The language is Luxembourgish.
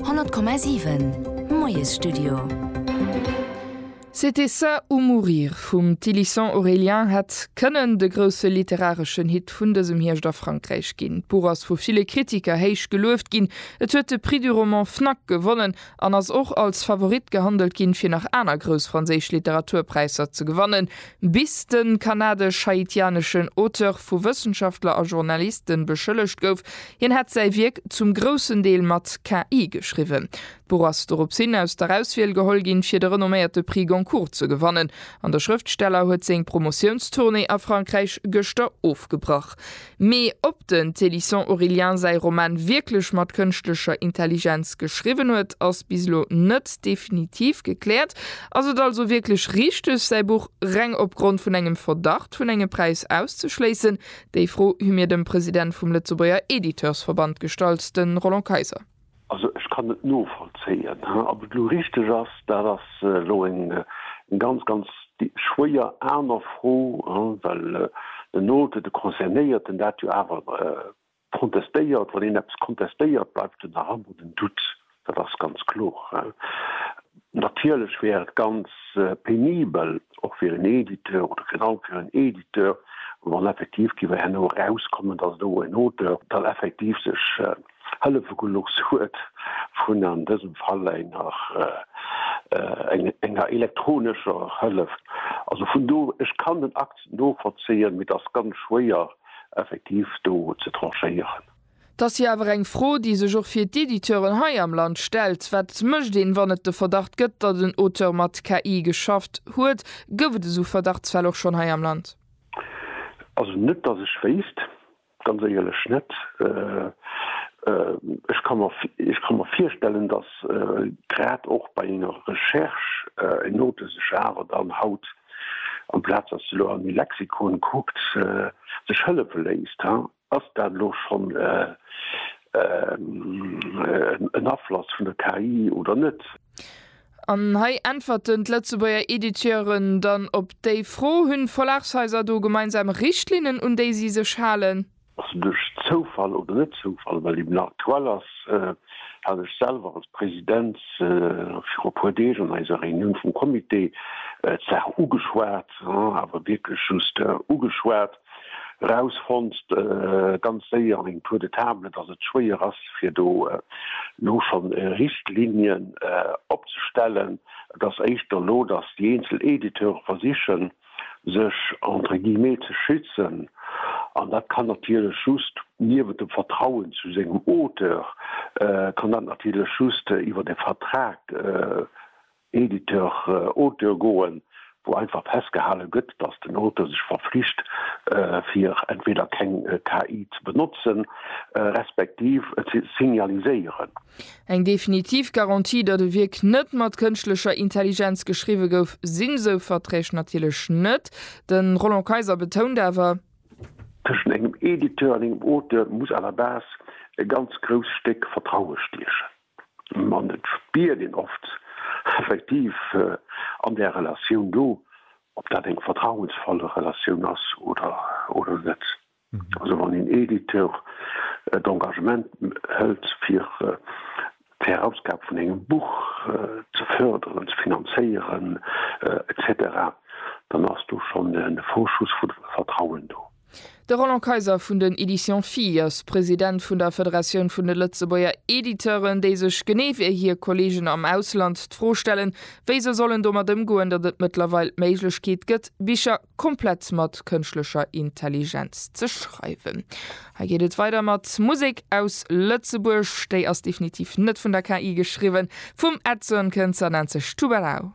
100,7 Moiesstudio. C'était ça ou mourir vum Thylissant Aurélien hätt kënnen de grousse literareschen Hit vun dësem Hierscht a Frankräich ginn. D'Buch ass vu ville Kritiker héich gelueft ginn, et huet de Prix du roman Fnac gewonnen an ass och als Favorit gehandelt ginn, fir nach aner grouss franséisch Literaturpräisser ze gewannen, Bis de kanadesch-haitianeschen Auteur vu Wëssenschaftler a Journaliste beschëllegt gouf, hien hätt säi Wierk zum groussen Deel mat KI geschriwwen. D'Buch ass dorops hin aus der Auswiel geholl ginn, fir de renomméierte Prix Goncourt ze gewannen, an de Schrëftsteller huet seng Promotiounstournée a Frankräich gëschter ofgebrach. Mee ob den Célisson-Aurélien säi Roman wierklech mat kënschtlecher Intelligenz geschriwwen huet, ass bis elo net definitiv gekläert. Ass et also wierklech richteg, säi Buch reng opgrond vun engem Verdacht vun engem Präis auszeschléissen? Déi Fro hu mir dem President vum Lëtzebuerger Editeursverband gestallt, de Roland Kayser. Also ech kann et novollzéien. Ob et elo richteg ass, dat ass elo eng ganz, ganz schwéier aner Fro, well den Auteur, de Concernéierten, dat jo awer contestéiert. Wann een eppes contestéiert, bleift jo nach ëmmer den Doute, dat ass ganz kloer. Natierlech wär et ganz penibel, och fir en Editeur oder virun allem fir en Editeur, wann effektiv géif herno erauskommen, datt elo en Auteur dann effektiv sech Hëllefegeluchs huet vun an dësem Fall enger enger elektronescher Hëllef. Also vun do, ech kann den Akt novollzéien, mee et ass ganz schwéier effektiv do ze tranchéieren. Et ass jo awer eng Fro, déi sech och fir d'Editeuren hei am Land stellt, Wat mécht een, wann et de Verdacht gëtt, datt en Auteur mat KI geschafft huet? Gouf et esou Verdachtsfäll och schonn hei am Land? Also net, datt ech wéisst. Ganz éierlech net. Ech ka mer virstellen, datt grad och bei enger Recherche eng Note sech awer dann haut, amplaz datt se elo an e Lexikon kuckt, sech hëllefe léisst. Ass dat elo schonn en Afloss vun der KI oder net? An hei äntwerten d'Lëtzebuerger Editeuren dann op déi Fro, Hunn d'Verlagshaiser do gemeinsam Richtlinnen, un déi si sech halen? Ass en duerch Zoufall oder net Zoufall? Well eben aktuell ass, hat ech selwer als President viru e puer Deeg an eiser Reunioun vum Comité d'Saach ugeschwat, awer wierklech just ugeschwat, rausfonnt ganz séier an engem Tour de table, dass et schwéier ass fir do elo scho Richtlinien opzestellen, et ass éischter elo, dass déi eenzel Editeure versichen sech entre guillemets ze schützen an dat kann natierlech just niewent dem Vertrauen zu sengem Auteur kann dat natierlech just iwwert e Vertrag Editeur, Auteur goen, wou einfach festgehale gëtt, datt den Auteur sech verflicht, fir entweder keng KI ze benotzen, respektiv et ze signaliséieren. Eng definitiv Garantie, datt e Wierk net mat kënschtlecher Intelligenz geschriwwe gouf, sinn esou Verträg natierlech net. De Roland Kayser betount awer. Tëschent engem Editeur an engem Auteur muss à la base e ganz grousst Stéck Vertraue stiechen. An et spiert een oft effektiv an där Relatioun do, ob dat eng vertrauensvoll Relatioun ass oder net. Also wann een Editeur d'Engagement hëlt, fir d'Herausgab vun engem Buch ze fërderen, ze finanzéieren, etc, dann ass do schonn e Vorschuss vu Vertrauen do. De Roland Kayser vun den Editions Phi ass President vun der Federatioun vun de Lëtzebuerger Editeuren, déi sech, genee wéi hir Kolleegen am Ausland, d'Fro stellen, wéi se sollen domat ëmgoen, datt et mëttlerweil d'Méiglechkeet gëtt, Bicher komplett mat kënschtlecher Intelligenz ze schreiwen. Hei geet et weider mat Musek aus Lëtzebuerg. Déi ass definitiv net vun der KI geschriwwen. Vum Edson Könzer nennt sech Tubarão.